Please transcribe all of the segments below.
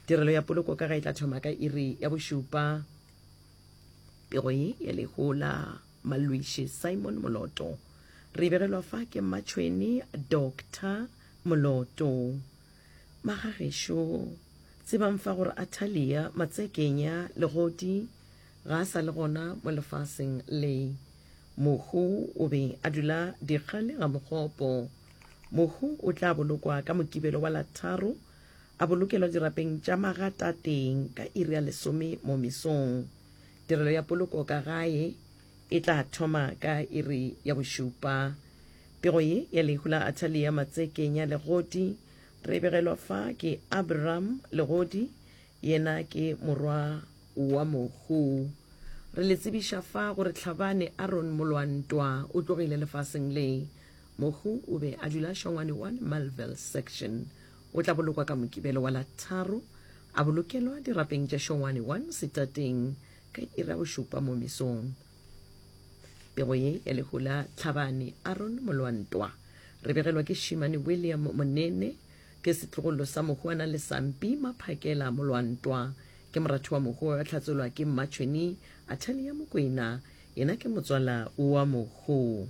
Tirelo ya poloko ka ga e tla thoma ka iri ya bošupa. Pego ye ya lehu la malwiši Simon Moloto. Re begelwa fa ke mmatšhweni Doctor Moloto. Magagešo, tsebang fa gore Atalia Matsekenya Legodi ga a sa le gona mo lefaseng le. Mohu o be a dula Dikgale ga Mogopo. Mohu o tla bolokwa ka Mokibelo wa la tharo A bolokelwa dirapeng tša magatateng ka iri ya lesome mo mesong. Tirelo ya poloko ka gae e tla thoma ka iri ya bošupa. Pego ye ya lehu la Athalia Matsekenya Legodi re begelwa fa ke Abraham Legodi, yena ke morwa wa Mohu. Re le tsebiša fa gore Tlhabane Aaron Molwantwa o tlogile lefaseng le. Mohu o be a dula Shongwane 1 Malville Section. O tla bolokwa ka Mokibelo wa la tharo, a bolokelwa dirapeng tša Shongwane 1 setateng ka iri ya bošupa mo mesong. Pego ye ya lehu la Tlhabane Aaron Molwantwa re begelwa ke Šimane William Monene, ke setlogolo sa Mohuana Lesampi Maphakela Molwantwa, ke moratho wa Mohu wa Tlhatsolwa ke Mmatšhweni Athalia Mokwena, yena ke motswala wa Mohu.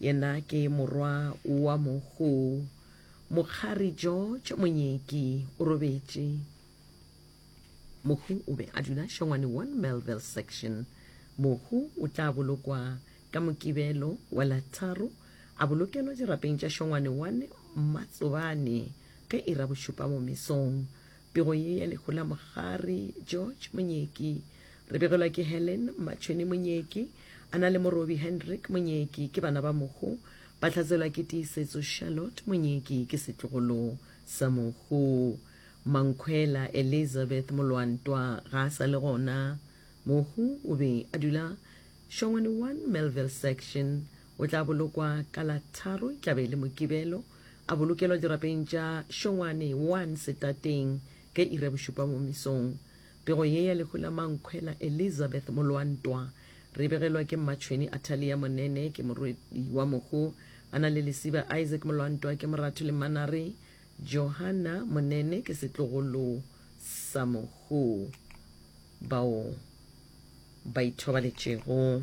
Yena ke morwa wa mogo. Mokgari George Monyeki o robetše. Mohu o be a dula Shongwane 1 Melville Section. Mohu o tla bolokwa ka Mokibelo wa la tharo a bolokelwa dirapeng tša Shongwane 1 Mmatsobane ge e ra bošupa mo mesong. Pego ye ya lehu la mogare. George Monyeki. Re begelwa ke Helen Mmatšhweni Monyeki, a na le morobi Hendrick Monyeki, ke bana ba mohu. Ba hlatselwa ke Tiisetso Charlotte Monyeki, ke setlogolo sa mohu. Mankhwela Elizabeth Molwantwa ga a sa le gona. Mohu o be a dula Shongweni one, Melville Section, O tla bolokwa ka la tharo, e tla be e le Mokibelo, a bolokelwa dirapeng tša Šongwane 1 setateng ka iri ya bošupa mo mesong. Pego ye ya lehu la Mankhwela Elizabeth Molwantwa re e begelwa ke mmatšhweni Athalia Monene, ke morwedi wa mohu, a na le lesiba Isaac Molwantwa, ke moratho le mmanare Johanna Monene, ke setlogolo sa mohu. Bao ba ithobaletšego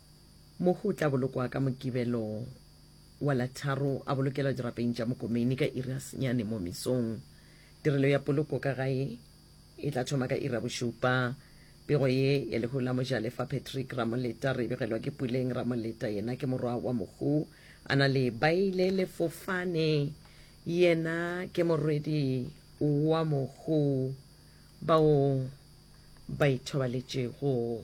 Mohu o tla bolokwa ka Mokibelo wa la tharo a bolokelwa dirapeng tša mokomeni ka iri ya senyane mo mesong. Tirelo ya poloko ka gae e tla thoma ka iri ya bošupa. Pego ye ya lehu la Mojalefa Patrick Ramoleta re e begelwa ke Puleng Ramoleta, yena ke morwa wa mohu a na le Baile Lefofane, yena ke morwedi wa mohu, bao ba ithobaletšego.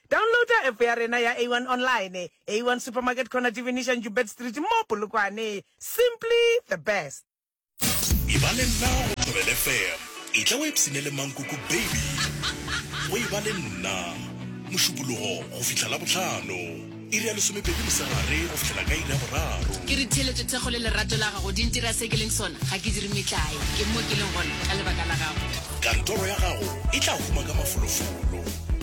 Downloada app ya rena ya A one Online, A one Supermarket Corner Divinisha Njubed Street mo Polokwane. Simply the best. Eba le nna go Thobela FM. Etla o ipshine le Mankoko Baby go Eba le nna, Mošupologo go fihla Labohlano, iri ya lesomepedi mosegare go fihlela ka iri ya boraro. Ke re theeletšo thekgo le lerato la gago di ntira se ke leng sona, ga ke dire metlae, ke mo ke leng gona ka lebaka la gago. Kantoro ya gago e tla huma ka mafolofolo.